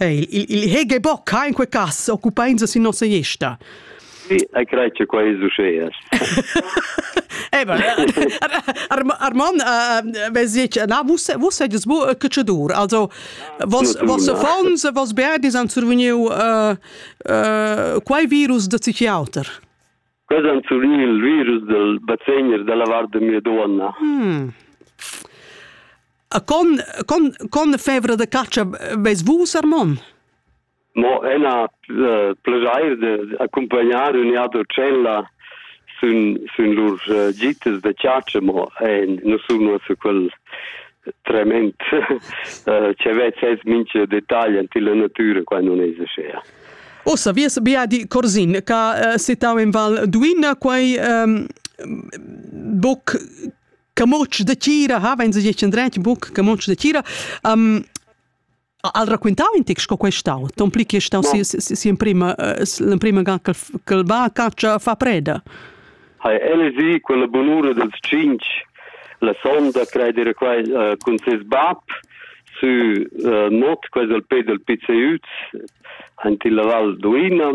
Il, il, il hege boc ha in quei cass occupainsa sin nossa gesta. Sì, ei crei che quei es uschea. Eba, Armon, vesic, na, vus vus sedes bu cacciadur, also vos vos affons, vos berdis han survegniu quei virus da psichiater. Quels han subì il virus dal basegner dalla vart da mia duonna. Hmm. Con, con, con fevra de caccia ves vus, Armon? Mo ena uh, plegair de accompagnare un iato cella sun, sun lur uh, gitas de caccia, mo en non sono su quel tremend uh, ce vet ses mince dettagli anti la natura qua non esce. Ossa, vies biadi Corsin, ca uh, setau in Val Duina, quai um, boc camotsch de tira, ha wenn sich endret boc camotsch de tira, um, al racquintau in tic sco questau, ton pli che stau si si in prima l'emprima ga che va caccia fa preda. ha el gì quella bunura dals tschintg la sonda crai dir quai uh, cun ses bab sü uh, not quasi al pe del PCUZ in la Val Duina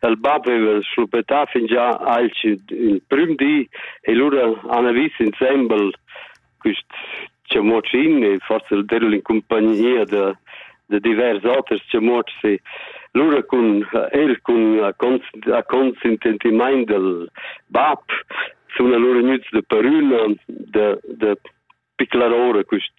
el bab aveva schluppetà fingià alch il prüm di e lura han vis insembel quist chamocin e forsa derul in compagnia da da divers oters chamotschs lura cun el cun a consententimaint del bab sun allura gnüts da parüna da da piclar ora quist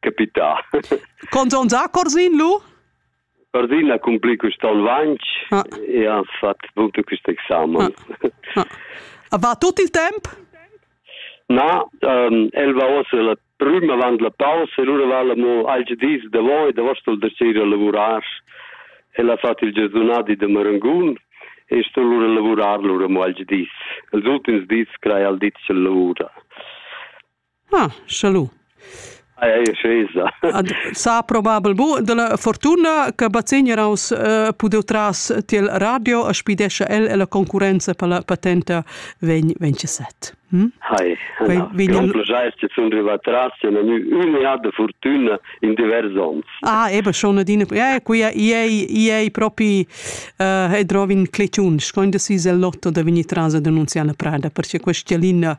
capità. Conton da Corsin lu? Corsin ha cumpli quest onn vanch ah. e ha fatg bunto quest examen. Ah. Ah. Va tut il temp? Na, um, el va ossa la prüm avant la pausa e lura va la mo alge dis davoi davos dal dersir a lavurar. El ha fatg il giazunadi de Marangun e sto lura lavurar lura mo alge dis. Els ultims dis crai al ditg lavura. Ah, salud. Sa probabel bu della fortuna che Bazegner aus uh, pudeu tras tiel radio a spidescha el e la concurrenza per la patenta vegn vence set. Hm? Hai, vegn progetto sun riva tras e nu un e de fortuna in divers ons. Ah, ebe schon adina ja, qui ei ei propi uh, e drovin cleciun, scoin de si el lotto da vigni tras ad annunziar la prada perché questa linea